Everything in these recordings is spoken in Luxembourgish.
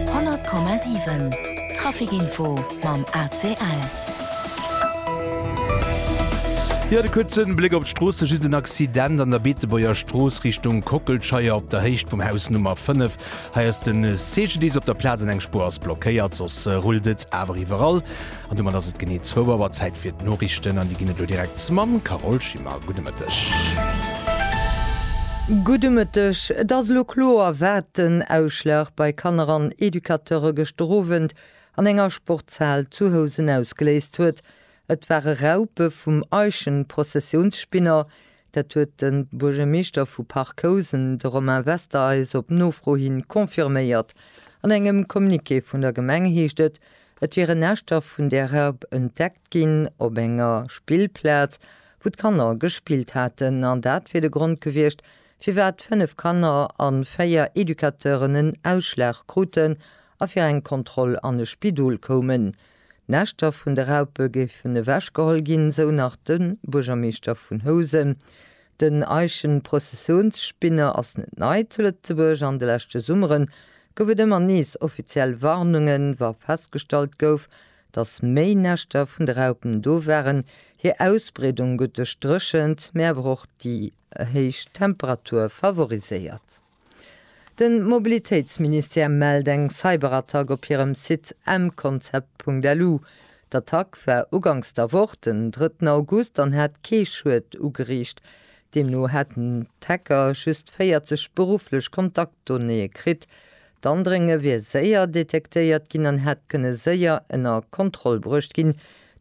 100,7 Trafic-Info mam ACL. Jo, de kuerzen Bléck op d'Stroosse, just en Accident an der Beetebuerger Strooss Richtung Kockelscheier op der Héicht vum Haus Nummer 5. Hei ass den CGDIS op der Plaz an eng Spuer ass blockéiert, soss rullt et awer iwwerall. An domat ass et genee zwou Auer Zäit fir d'Noriichten an déi ginn et elo direkt mam Carole Schimmer. Gudde Mëtteg. Gudde Mëtteg. Et ass elo kloer, wat den Ausschlag bei Kanner an Educateure gëschter Owend an enger Sportshal zu Housen ausgeléist huet. Et ware Raupe vum Eichenprozessionsspinner, Dat huet de Buergermeeschter vu Parc-Housen, de Romain Wester, eis op Nofro hi confirméiert. An engem Communiqué vun der Gemeng heescht et, et wieren Näschter vun där Raup entdeckt ginn op enger Spillplaz, wou d'Kanner gespillt haten. An dat wier de Grond gewiescht, firwat fënnef Kanner a véier Educateuren en Ausschlag kruten a fir eng Kontroll an e Spidol koumen. D'Näschter vun de Raupe géifen ewechgeholl ginn, sou nach de Buergermeeschter vun Housen. Den Eichenprozessionsspinner ass net nei zu Lëtzebuerg. An de leschte Summere gouf et ëmmer nees offiziell Warnungen, wa festgestallt gouf, datt méi Näschter vun de Raupen do waren. Hir Ausbreedung gëtt duerch d'Dréchent, mee awer och déi héich Temperature favoriséiert. Den Mobilitéitsministère mellt eng Cyberattack op hirem Site mconcept.lu. D'Attack war ugangs der Woch, den drëtten August, an hat kee Schued ugeriicht. Deemno hätten d'Hacker just 40 berufflech Kontaktdonnéeë kritt. D'Andrénge wier séier detektéiert ginn an hätt kënne séier ënner Kontroll bruecht ginn.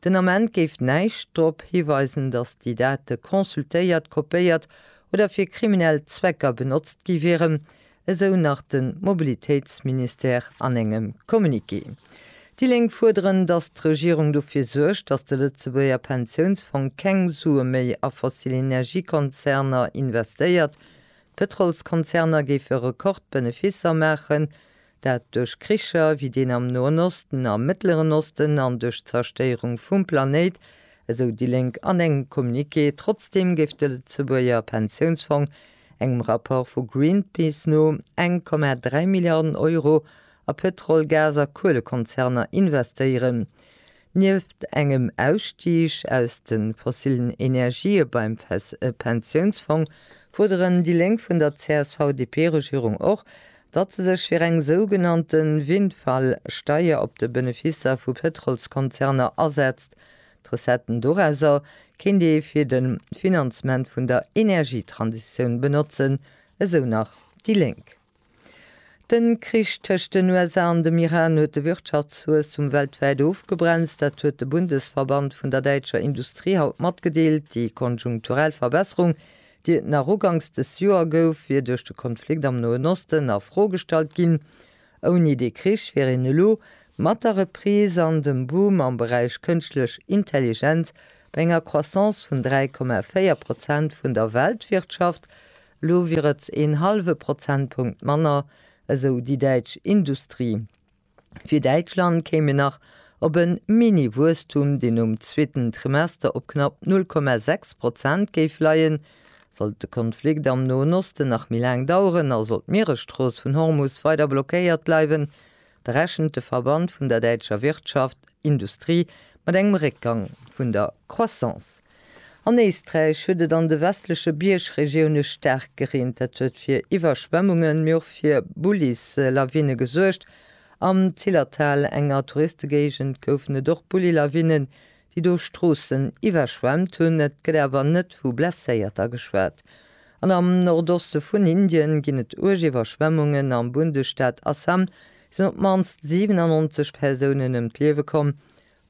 Den Ament géif näischt drop hiweisen, datt déi Date consultéiert, kopéiert oder fir kriminell Zwecker benotzt gi wieren, esou nach de Mobilitéitsministère an engem Communiqué. Déi Lénk fuerderen, datt d'Regierung dofir suergt, datt de Lëtzebuerger Pensiounsfong keng Sue méi a fossil Energiekonzerner investéiert. D'Pëtrolskonzerner géife Rekordbeneficer maachen, dat duerch Kricher wéi deen am Noen Osten a Mëttleren Osten an duerch d'Zerstéierung vum Planéit, esou déi Lénk an engem Communiqué. Trotzdeem géif de Lëtzebuerger Pensiounsfong engem Rapport vu Greenpeace no 1,3 Milliarden Euro a Pëtrol-, Gas a Kuelekonzerner investéieren. Nieft engem Ausstig aus de fossillen Energië beim Pensiounsfong fuerderen déi Lénk vun der CSV-DP-Regierung och, datt se sech fir eng sougenannte Windfall-Steier op de Benefisser vu Pëtrolskonzerner asetzt. D'Recetten dorausser kéint ee fir de Finanzement vun der Energietransitioun benotzen, esou nach déi Lénk. De Krich tëscht den USA an dem Iran huet de Wirtschaftswuesstum weltwäit ofgebremst. Dat huet de Bundesverband vun der däitscher Industrie haut matgedeelt. Déi konjunkturell Verbesserung, déi et nach uganks dës Joer gouf, wier duerch de Konflikt am Noen Osten a Fro gestallt ginn. Ouni dee Krich wier een elo mat der Reprise an dem Boom am Beräich kënschtlech Intelligenz bei enger Croissance vun 3,4 Prozent vun der Weltwirtschaft, Elo wier et een hallwe Prozentpunkt manner, esou déi däitsch Industrie. Fir Däitschland kéim een nach op e Mini-Wuesstum, deen nom zweeten Trimester op knapp 0,6 Prozent géif leien. Sollt de Konflikt am Noen Osten nach méi laang daueren a sollt d'Mieresstrooss vun Hormus weider blockéiert bleiwen, Da rechent de Verband vun der däitscher Wirtschaft, Industrie mat engem Réckgang vun der Croissance. An Éisträich huet et an de westleche Biergregioune staark gereent. Dat huet fir Iwwerschwemmungen, mee och fir Bullislawine gesuergt. Am Zillertal, enger Touristegéigend, goufen et och Bullilawinnen, déi do Stroossen iwwerschwemmt hunn. Et gëtt awer net vu Blesséierter geschwat. An am Nordoste vun Indien ginn et uerg Iwwerschwemmungen. Am Bundesstaat Assam sinn op d'mannst 97 Persounen ëm d'Liewe komm.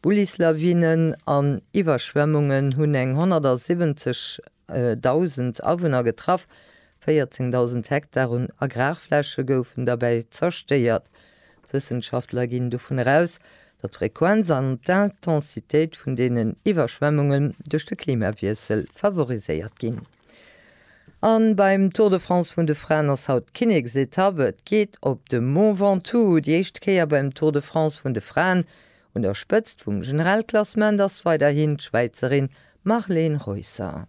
Bullislawinen an Iwwerschwemmungen hunn eng 170.000 Awunner getraff, 14.000 Hektar un Agrarfläche goufen derbäi zerstéiert. D'Wëssenschaftler ginn dovun eraus, datt d'Frequenz an d'Intensitéit vun deenen Iwwerschwemmunge duerch de Klimawiessel favoriséiert ginn. An beim Tour de France vun de Fraen ass haut d'Kinneksetapp. Et geet op de Mont Ventoux. Déi éischt Kéier beim Tour de France vun de Fraen. Un der Spëtzt vum Generalklassement ass weiderhin d'Schwäizerin Marleen Reusser.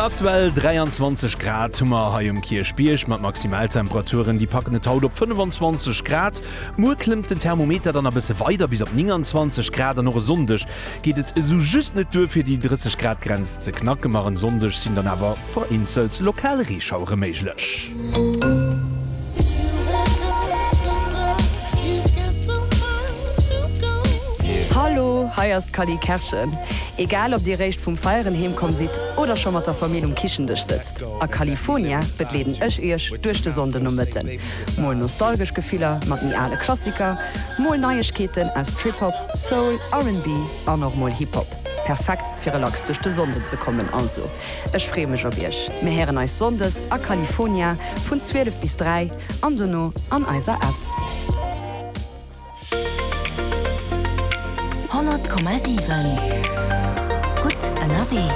Aktuell 23 Grad hu mer hei um Kierchbierg mat Maximaltemperaturen, déi packen et haut op 25 Grad. Muer klëmmt den Thermometer dann e bësse weider bis op 29 Grad an och e Sonndeg geet et esou just net duer fir déi 30 Grad Grenz ze knacken, ma en Sonndeg sinn dann awer vereenzelt lokal Reeschauere méiglech. Hallo, hei ass d'Cally Kerschen. Egal ob dir réischt vum Feieren heem komm sidd oder scho mat der Famill um Kichendësch sëtzt, a California begleeden ech iech duerch de Sonndenomëtten. Mol nostalgesch Gefiller mat méi ale Klassiker, mol Neiegkeeten aus Trip-Hop, Soul, RnB an och mol Hip-Hop. Perfekt fir relax duerch de Sonnden ze kommen. Also ech freeë mech op iech. Mir héieren eis Sonndes a Califonia vun 12 bis 3 an dono an eiser App. 100,7 Gutt ënnerwee.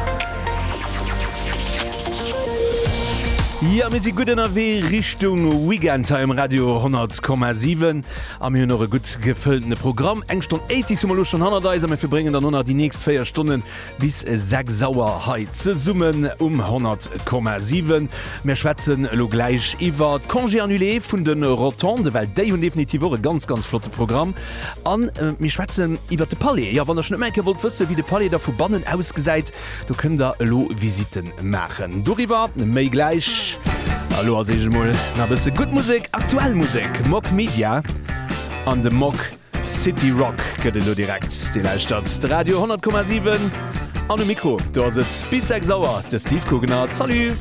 Jo, mir si gutt ënnerwee Richtung Weekend hei um Radio 100,7 a mir hunn och e gutt gefëlltene Programm. Eng Stonn 80s hu mer elo schonn hannert eis a mir verbréngen dann elo nach déi nächst véier Stonnen Bis 6 Auer hei zesummen um 100,7. Mir schwätzen elo gläich iwwer d'Congés annulés vun de Rotonden, well déi hunn definitiv och e ganz, ganz flotte Programm. An mir schwätzen iwwer de Palais. Jo, wann der schonn ëmmer eng Kéier wollt wëssen, wéi de Palais da vu bannen ausgesäit, do kënnt der elo Visite maachen. Doriwwer méi gläich. A lo als Eescht emol nach e bësse gutt Musek, aktuell Musek. Mog Media an de Mog. City Rock gëtt elo direkt. Dir lauschtert de Radio 100,7 an um Mikro do ass et bis 6 Auer de Steve Gugner. Salut!